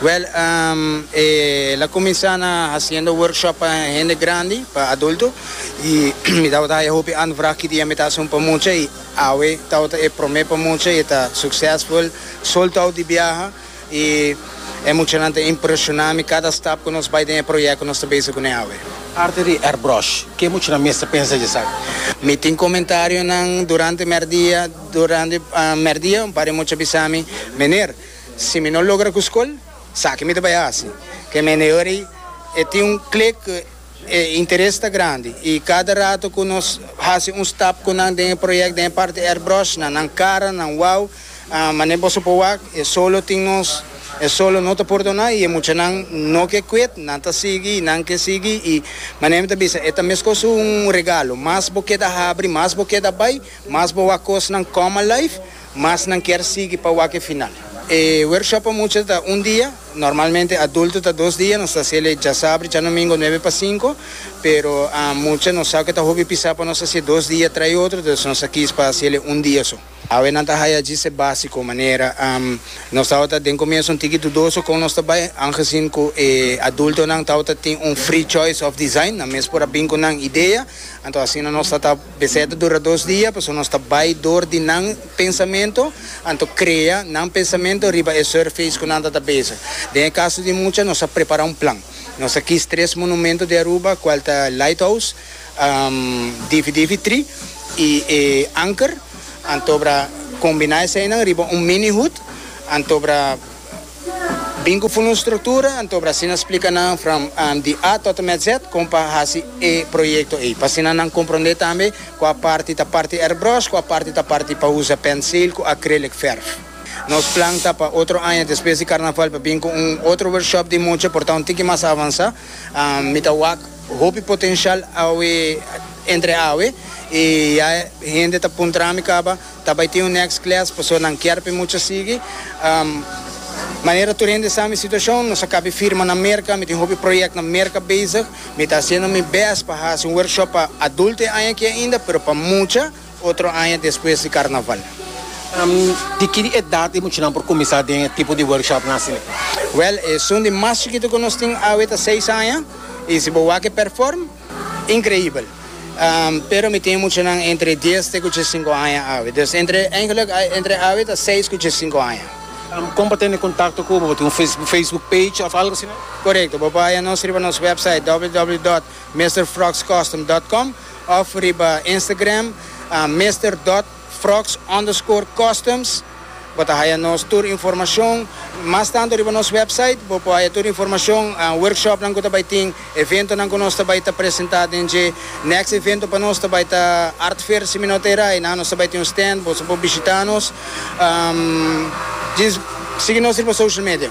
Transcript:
Well ehm e la cuminsa na haciendo workshop pa hende grandi pa adulto y mi tabata haya hopi ant vraag ki dia mi ta hacion pa mucha y awe tabata e prome pa mucha y ta succesful sold out di biaha y e muchanan ta impresiona mi cada stap cu nos bay den e project cu nos ta bezig cune awe. Arte di airbrush ke muchanan mes ta pensa di esaki? Mi tin comentarion nan durante merdia durante merdia un par di mucha bisa mi meneer. Si mi no logra ku skol, sa ke mi ta bai hasi. Ke mendedor ei, e tin un klik ku e interes ta grandi i kada rato ku nos hasi un stap ku nan den e proyèkt den e parti airbrush na nan kara, nan wou, manera boso por wak e solo tin nos, e solo no ta pordoná i e muchanan no ke kwit, nan ta sigui i nan ke sigui i manera mi ta bisa e ta meskos un regalo, mas bo keda habri, mas bo keda bai. Mas bo wak kosnan kòma live, mas nan kier sigui pa wak e final. E workshop pa mucha ta un dia, normalmente adulto ta dos dia, nos ta hasiel e djasabri, djanomingo nuebe pa sinku, pero mucha nos sa ku e ta hopi pisa pa nos hasi e dos dia tra e otro, dus nos a kis pa hasiel e un dia so. Awe nan ta haya djise básiko, manera nos tabata den komienso un tiki dudoso kon nos ta bai, angezin ku e adultonan tabata tin un free choice of design, nan mes por a bin ku nan idea, anto asina nos ta ta. P'esei ta dura dos dia, pasobra nos ta bai dor di nan pensamentu, anto krea nan pensamentu riba e surface ku nan ta ta bezig. Den e kaso di mucha, nos a prepará un plan. Nos a kis tres monumentu di Aruba, kual ta Lighthouse, Difi Difi Tri i e Anker, anto pra kombiná eseinan riba un mini hut, anto pra. Bin ku funda un struktura, anto Brasina splika nan from di A tot en met Z kon pa hasi e proyekto ei, pa asina nan komprondé tambe kua parti ta parti airbrush, kua parti ta parti pa usa pensil ku acrylic verf. Nos plan ta pa otro aña despues di karnaval pa bin ku un otro workshop di mucha por ta un tiki mas avansá. Mi ta wak hopi potenshal awe entre awe i ya hende ta puntrami kaba, Ta bai tin un next class paso nan kier p'e mucha sigui. Manera tur hende sa mi situacion, nos a caba e firma na Merca, mi tin hopi project na Merca bezig, mi ta haciendo mi best pa haci un workshop pa adulto e aña aki ainda, pero pa mucha otro aña despues di Carnaval. Di ki edad e muchanan por cuminsa den e tipo di workshopnan asina? Wel, esun di mas chikito cu nos tin awe ta seis aña y si bo wak e perform. Increibel. Pero mi tin muchanan entre dies te cu djessinku aña awe. Dus entre, eigenlijk entre awe ta seis cu djessinku aña. Con pa tene contacto cu bo? Bo tin un Facebook page of algo asina? Corecto. Bo por haya nos riba nos website www dot mister frogs custom dot com of riba Instagram mister dot. Frox underscore customs bo ta haya nos tur informacion mas tanto riba nos website bo por haya tur informacion workshopnan cu ta bay tin eventonan cu nos ta bay ta presenta den dje next evento pa nos ta bay ta art fair si mi no ta eray na nos ta bay tin un stand boso por bishita nos dje sigui nos riba social media.